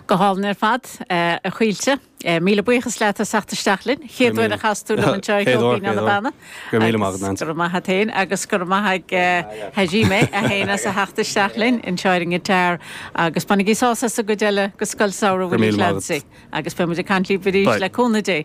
Go hálainn ar fad, a Chaoilte. Míle buíochas leat as teacht isteach linn. Chéad uair a chas tú liom anseo ar Cheol Binn ó na Beanna. Go raibh míle maith a't, a Neansaí. Go raibh maith a't fhéin agus go raibh maith ag Hajime é fhéin as a theacht isteach linn anseo ar an ngiotáir agus bainigí sás as an gcuid eile de Scoil Samhraidh Willie Clancy. Go raibh míle maith a't. Agus beidh muid ag caint libh arís le cúnamh Dé.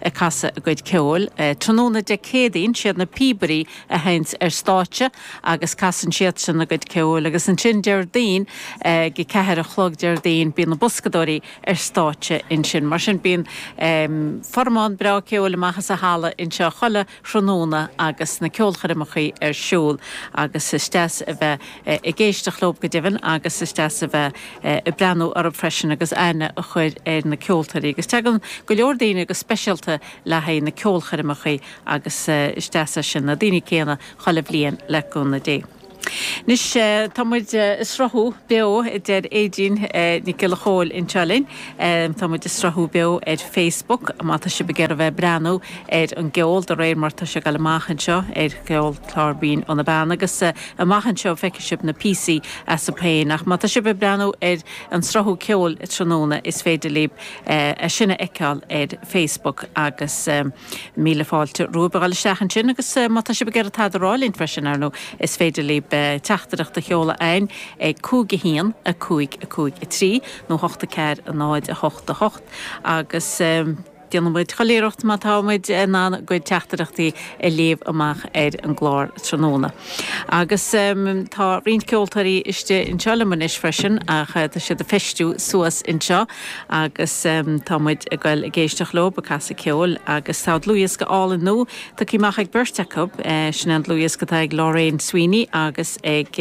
ag casadh a gcuid ceoil. Tráthnóna Dé Céadaoin, siad na píobairí a thaganns ar stáitse agus casann siadsan a gcuid ceoil agus ansin Déardaoin, ag a ceathair a chlog Déardaoin, bíonn na boscadóirí ar stáitse ansin. Mar sin bíonn formán breá ceoil amach as an halla anseo chuile. thráthnóna agus na ceolchoirmeacha ar siúl agus is deas a bheith ag éisteacht leo go deimhin agus is deas a bheith ag breathnú orthu freisin agus aithne a chur ar na ceoltóirí agus tagann go leor daoine go speisialta le haghaidh na ceolchoirmeacha agus is deas é sin, na daoine céanna chuile bhliain le cúnamh Dé. Anois tá muid a sruthú beo, a deir Éadaoin Nic Giolla Chomhaill anseo linn. Tá muid ag sruthú beo ar Facebook má tá sibh ag iarraidh bheith ag breathnú ar an gceol de réir mar tá sé ag dul amach anseo ar Cheol, clár Binn ó na Beanna agus amach anseo feicfidh sibh na píosaí astu féin. Ach má tá sibh ag breathnú ar an sruthú ceoil tráthnóna is féidir libh é sin a fheiceáil ar Facebook agus. Míle fáilte romhaibh a dhul isteach ansin agus má tá sibh ag iarraidh tada a rá linn freisin, ar ndóigh, is féidir libh teachtaireacht a sheoladh chugainn ag 5 1 5 5 3 nó 8 4 0 8 8 agus déanfaidh muid chuile iarracht má tá muid in ann bhur gcuid teachtaireachtaí a léamh amach ar an gclár tráthnóna. Agus tá roinnt ceoltóirí istigh anseo liom anois freisin ach tá siad ag feistiú suas anseo. Agus tá muid ag goil ag éisteacht leo, ag casadh ceoil. Agus tá dlúthdhiosca álainn nua tugtha amach ag beirt acu. Sin é an dlúthdhiosca atá ag Lorraine Sweeney agus ag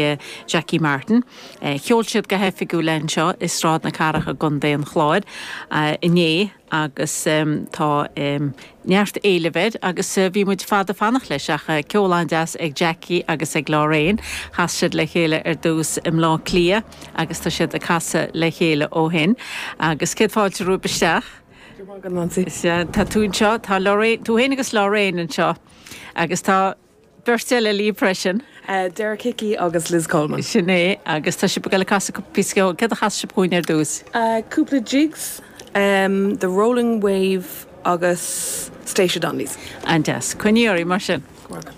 Jacqui Martin. Sheol siad go hoifigiúil é anseo i Sráid na Cathrach i gContae an Chláir inné agus tá. neart éilimh air agus bhí muid fada ag fanacht leis ach ceol an-deas ag Jacqui agus ag Lorraine. Chas siad le chéile ar dtús i mBleá Cliath agus tá siad ag casadh le chéile ó shin agus céad fáilte romhaibh isteach. Tá tú anseo, tá tú fhéin agus Lorraine anseo agus tá. beirt eile libh freisin. Derek Hickey agus Liz Coleman. Sin é, agus tá sibh ag dul ag casadh píosa ceoil. Céard a chasfas sibh dhúinn ar dtús? Cúpla jigs, The Rolling Wave agus Statia Donnelly's. An-deas. Coinnígí oraibh, mar sin. Go raibh maith agat.